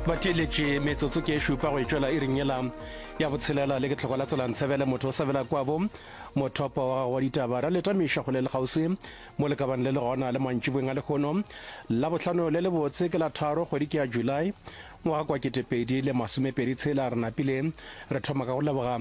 ba theeletše metsotso ke e šupa go e tšwela iring yela ya botshelela le ke tlhoko la tselang tshebele motho o sabela kwabo mothopo wa gago wa ditaba ra leta mešo go le le kgauswi mo le kabane le le gona le mantšibong a lekgono la botlhano le le botse ke la tharo kgwedi ke ya july ngwaga kwa ketepedi le masomepedi tshela re napile re thoma ka go leboga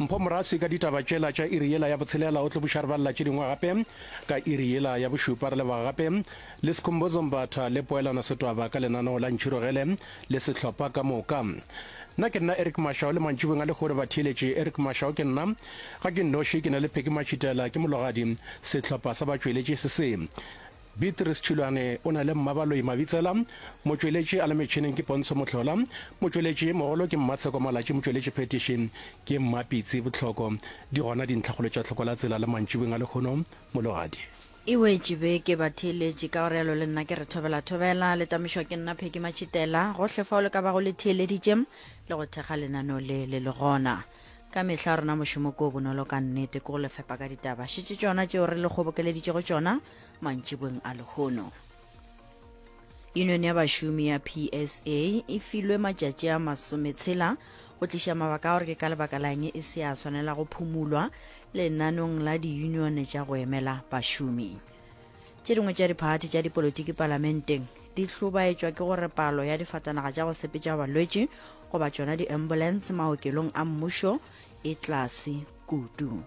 mpho moraswi ka ditaba tšela tša iri yela ya botshelela o tlo buša re balela tše dingwe gape ka iri yela ya bošupa re leboga gape Le Skhumbuzo Mbatha le Poelano Setwaba ka lenaneo la Ntšhirogele le sehlopha ka moka. Nna ke nna Eric Mashao le mantšibong a lehure batheeletši Eric Mashao ke nna. Ga ke nnoši ke na le Pheki Matšhitela ke mologadi. Sehlopha sa batšweletši se se. Beatrice Tšhilwane o na le Mmabaloi Mabitsela. Motšweletši a le metšhineng ke Pontsho Mohlola. Motšweletši mogolo ke Mmatsheko Malatši Motšweletši phethiši ke Mmapitsi Botlhoko. Di gona dintlhakgolo tša Tlhokola Tsela le mantšibong a lehono mologadi. E wetše beke ba theeletše, ka go realo le nna ke re thobela thobela. Le tamišwa ke nna Pheki Matšhitela. Gohle fao le ka bago le theeleditše le go thekga lenaneo le le le gona. Ka mehla rona mošomo ko o bonolo ka nnete ke go le fepa ka ditaba šetše tšona tšeo re le kgobokeleditšego tšona mantšiboeng a lehono. Union ya bašomi ya PSA e filwe matšatši a masometshela go tliša mabaka a gore ke ka lebaka lang e se ya swanela go phumulwa lenanong la di-union tša go emela bašomi tše dingwe tša diphathi tša dipolotiki palamenteng di hlobaetšwa ke gore palo ya difatanaga tša go sepetša balwetši goba tšona di-ambulance maokelong a mmušo e tlase kudu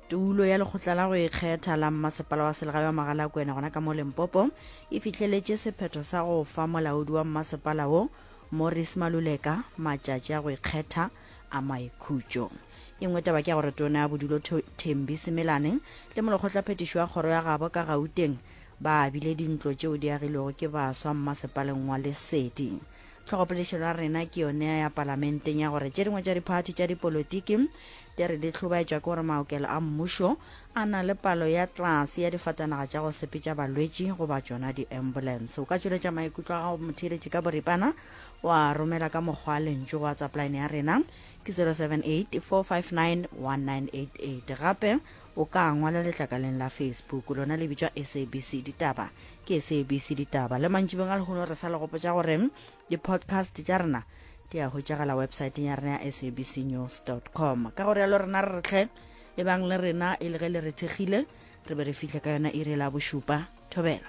tulo ya lekgotla la go ikgetha la mmasepala wa selegae wa magalakwena gona ka mo lempopo e fitlheletše sephetho sa go fa molaodi wa mmasepala wo morris maluleka matšatši a go ikgetha a maikhutšo e nngwe taba ke ya gore tona ya bodulo thembi semelane le molokgotlaphethišo wa kgoro ya gabo ka gauteng ba abile dintlo tšeo di agilwego ke baswa mmasepaleng wa lesedi Tlhogopolešelo ya rena ke yone ya palamenteng ya gore tše dingwe tša diphathi tša dipolotiki di re di hlobaetšwa ke gore maokelo a mmušo a na le palo ya tlase ya difatanaga tša go sepetša balwetši goba tšona di-ambulance. O ka tšweletša maikutlo a gago motheeletši ka boripana wa romela ka mokgwa lentšu go whatsapp line ya rena ke 078 459 1988 gape o ka ngwala letlakaleng la facebook lona le bitšwa sabc ditaba Ke SABC Ditaba le mantšibeng a lehono re sa le gopotša gore di-podcast tša rena di a hwetšagala websaeteng ya rena ya sabcnews com ka go rialo rena re retlhe e bang le rena e le ge le re thekgile re be re fihle ka yona iri la bošupa thobela